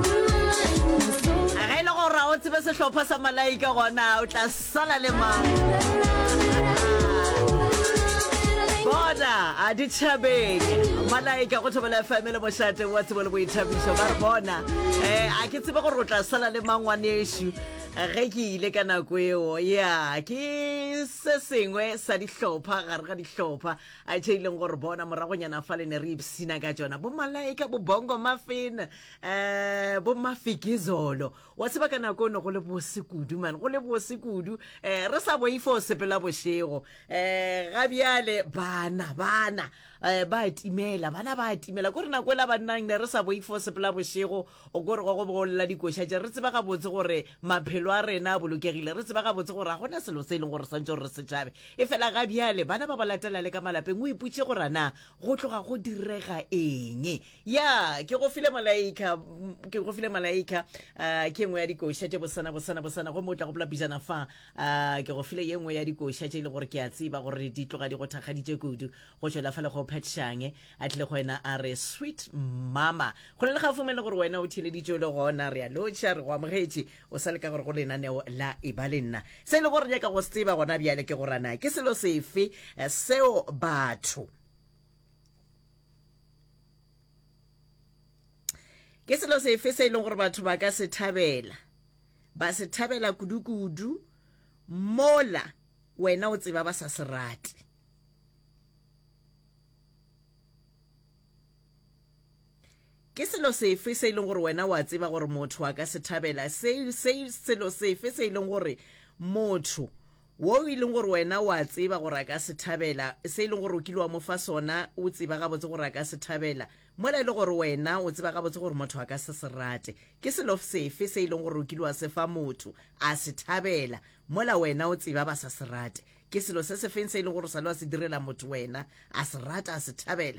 ge e le gore o tsebe sehlopha sa malaika gona o tla sala le mang bona a ditšhabeng malaika go thobela fm le mošate wa tsebo le boithabišo ba re bona um a ke tsebe gore o tla sala le mangwanešu ge ke ile ka nako eo ya ke se sengwe sa dihlopha gare ga dihlopha a tšhe ileng gore bona moragonyana fa le ne re ipsina ka tsona bo malaika bo bongo mafena um bo mafikizolo wa tseba ka nako ne go le bose kudu mane go le bose kudu um eh, re sa boifa o sepela bošego um ga bjale bana bana um ba timela bana ba timela kore nako ela bannang ne re sa boifa o sepela bošego o kore go go bogolela dikoša tše re tseba gabotse gore maphelo a rena a bolokegile re tseba gabotse gore ga gona selo se e leng gore swantse gore re setšhabe e fela ga bjale bana ba ba latela le ka malapeng o iputše gorana go tloga go direga eng ya ke go file malaika ke go file malaika uh, ke nngwe ya dikoša tše bosana bosana bosana gomme o tla gopola pijana fa uh, ke go file ye nngwe ya dikoša tše e le gore ke a tseba gore di tloga di go thakgaditše kudu go tšwela fa le go phetšhange a tlile go wena a re sweet mama go le le gafome le gore wena o theleditše le gona re a lotšha re go amogetše o sa le ka gore go lenaneo la e ba le nna se e le gore nyaka go se tseba gona bjale ke gorana ke selo sefe eh, seo batho ke selo sefe se e leng gore batho ba ka se thabela ba se thabela kudu-kudu mola wena o tseba ba sa se rate Ke selo sefe se e leng gore wena o a tseba gore motho a ka se thabela? Se, se, selo sefe se e leng gore motho wo e leng gore wena o a tseba gore a ka se thabela, se e leng gore o kile wa mo fa sona, o tseba gabotse gore a ka se thabela, mola e le gore wena o tseba gabotse gore motho a ka se se rate? Ke selo sefe se e leng gore o kile wa se fa motho, a se thabela, mola wena o tseba ba sa se rate? Ke selo se sefeng se e leng gore o sa le wa se direla motho wena, a se rata, a se thabela,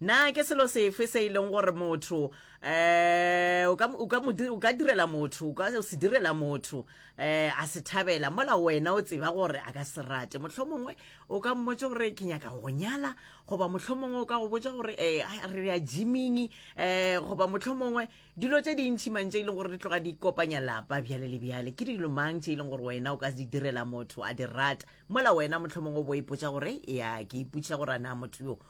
Na ke selo sefe se e leng gore motho um o ka direla motho o ka se direla motho um a se thabela mola wena o tseba gore a ka se rate motlho mongwe o ka mmotse gore ke nyaka go nyala goba motlho mongwe o ka go botsa gore um re ya jiming um goba motlho mongwe dilo tse dintšhi mang tse e leng gore di tloga di kopanya lapa bjale le bjale ke dilo mang tse e leng gore wena o ka di direla motho a di rata mola wena motlho mongwe o bo ipotsa gore ya ke ipotsa gore a na motho yo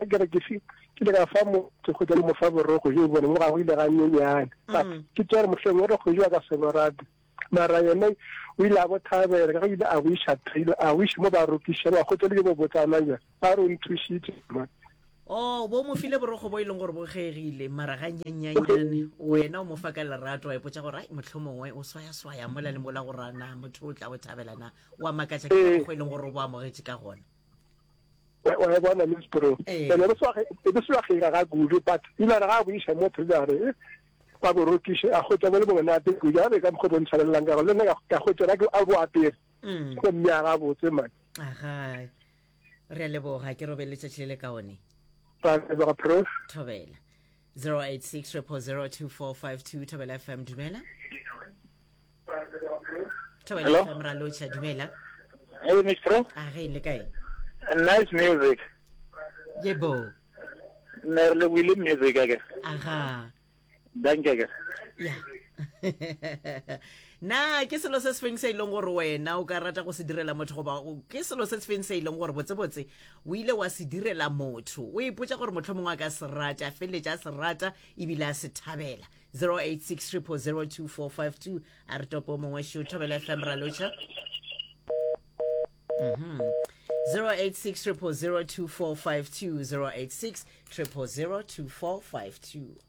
a kere ke se ke le ka fa mo ke go mo fa borogo jo bone mo ga go ile ga nyenyane but mm. ke tsere mohleng o re go jwa ka senorate mara yone o ile a bo thabela ka ile a bo isha thailo a wish mo ba rokisha ba go tsele bo botsana ja ba ro nthusitse ma Oh, bo mo file borogo bo e leng gore bo kgegile mara ga nyanyanyane wena o mo fa ka lerato wa ipotsa gore ai motlho mongwe o swayaswaya mola le mola go rana motho o tla o thabelana wa makatsa ke borogo e leng gore o bo amogetse ka gona wa e bona miss pro ee. ene e be swa kgera ga kudu but ilare ga a boiša mo trilare ba borokiše a hwetša bo le bongwe nate kudu a be ka mokgwa bo ntshwanelelang ka gore le nna ka hwetša ka a bo apere mm. go mme a ga botse mane aga re a leboga ke robe letšatši le le kaone thobela 0860002452 Thobela FM dumela Thobela FM ra locha dumela Hey Miss Pro A ah, re le kae Nice music Yebo Ne re le wile music ake Aha Danke ke Yeah na ke selo se se feng se e leng gore wena o ka rata go se direla motho goba ke selo se se feng se e leng gore botsebotse o ile wa se direla motho o ipotsa gore motlho mongwe a ka se rata a feleletša a se rata ebile a se thabela 0860002452 a re topo mongwe šo thobela fm raloša mm -hmm. 0860002452 0860002452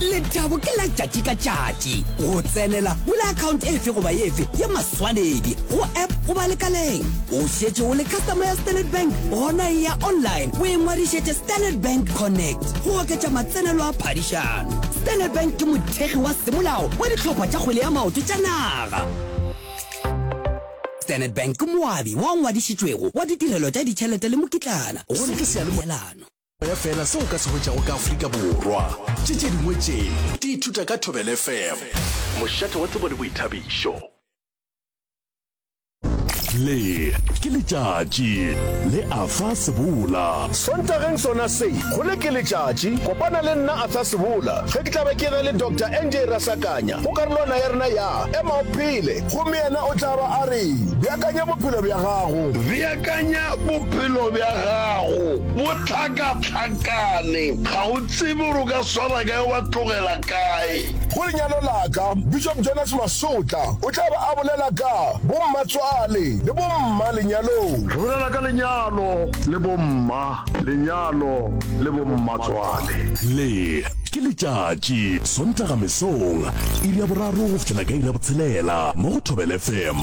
lethabo ke la tšatši ka tšatši go tsenela bula akhaonte efe goba efe ya maswanedi go app goba lekaleng o šetše o le customer ya standard bank gona e ya online o e ngwadišetše standard bank connect go oketša matsenelo a phadišano standard bank ke mothegi wa semolao wa ditlhopha tša kgwele ya maoto tša naga standard bank ke moabi wa ngwadišitšwego wa ditirelo tša ditšhelete le mokitlana go se ke sealelano ya fela se o ka se hwetšago ka afrika borwa tše tše dingwe tše di ithuta ka thobel fm mošate wa tsebo le boithabišo le ke letšatši le afa sebola sontageng sona se go le ke letšatši kopana le nna atha sebola ge ke tlabe ke ge le dr nj rasakanya go karolwana ya rena ya ema o phele gomme yena o tla ba a re beakanya bophelo bja gago Akanya bophelo bja gago bo hlakahlakane. Ga o tsebe gore o ka swara kae wa tlogela kae. Go lenyalo la ka, Bishop Jonas Masotla o tla be a bolela ka bommatswale le bomma lenyalong. Re bolela ka lenyalo le bomma lenyalo le bommatswale. Le ke letšatši, Sontaga mesong, iri ya boraro go fihlela ka iri ya botshelela mo go Thobela FM.